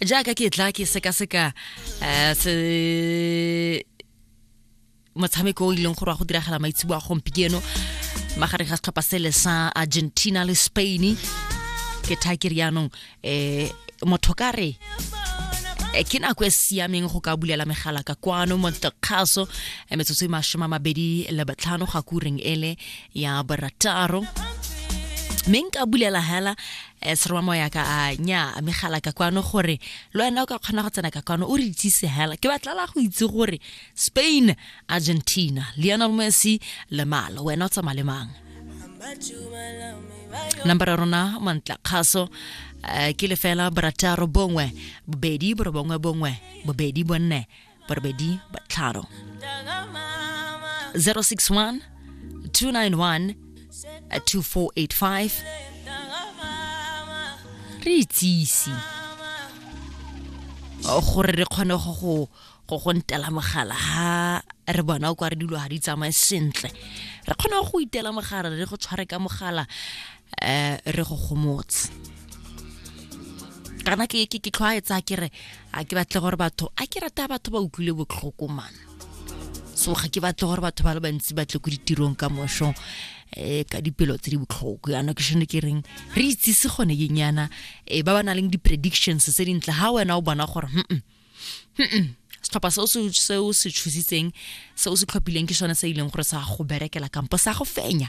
jaaka ke tla ke sekaseka um se motshameko o e leng gore wa go diragala maitsebo a gompieno magareng ga setlhopha sele sa argentina le spain ke tha ke rianong um motho ka re eh, ke nako e siameng go ka bulela megala ka kwano montekgaso eh, metsotso e masome a mabedi le botlhano ga kureng ele ya borataro mme nka bulela hela Eh, serwa moya ka a nya a megala ka kwano gore le wena o ka kgona go tsena ka kwano o re itsise hela ke batlala go itse gore spain argentina lionel messi le malo wena o tsamaya le mang number ya rona mantla kgaso eh, ke lefela borataro bongwe bobedi borobongwe bongwe bobedi bonne barobedi batlhano 061 291 2485 re itsise gore re kgone go go go go ntela mogala ha re bona o kwa re dilo ga di tsamaye sentle re kgona go itela mogala re go tshware ka mogala um re go gomotse kana ke ke tlhwaetsa ke re a ke batle gore batho a ke rata batho ba utlwile botlhoko mana so ga ke batle gore batho ba le bantsi batle ko ditirong ka mošo um eh, ka dipelo tse di botlhoko yana ke shone ke reng re itsise gone ke nyana um ba ba na leng di-predictions tse dintle ga wena o bona gore setlhopha se o se tshositseng se o se tlhophileng ke sone se e leng gore sa go berekela kampo sa go fenya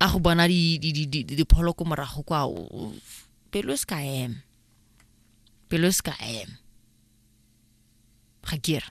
a go bona dipholo ko morago kwa pelo e se ka em pelo e se ka em ga kere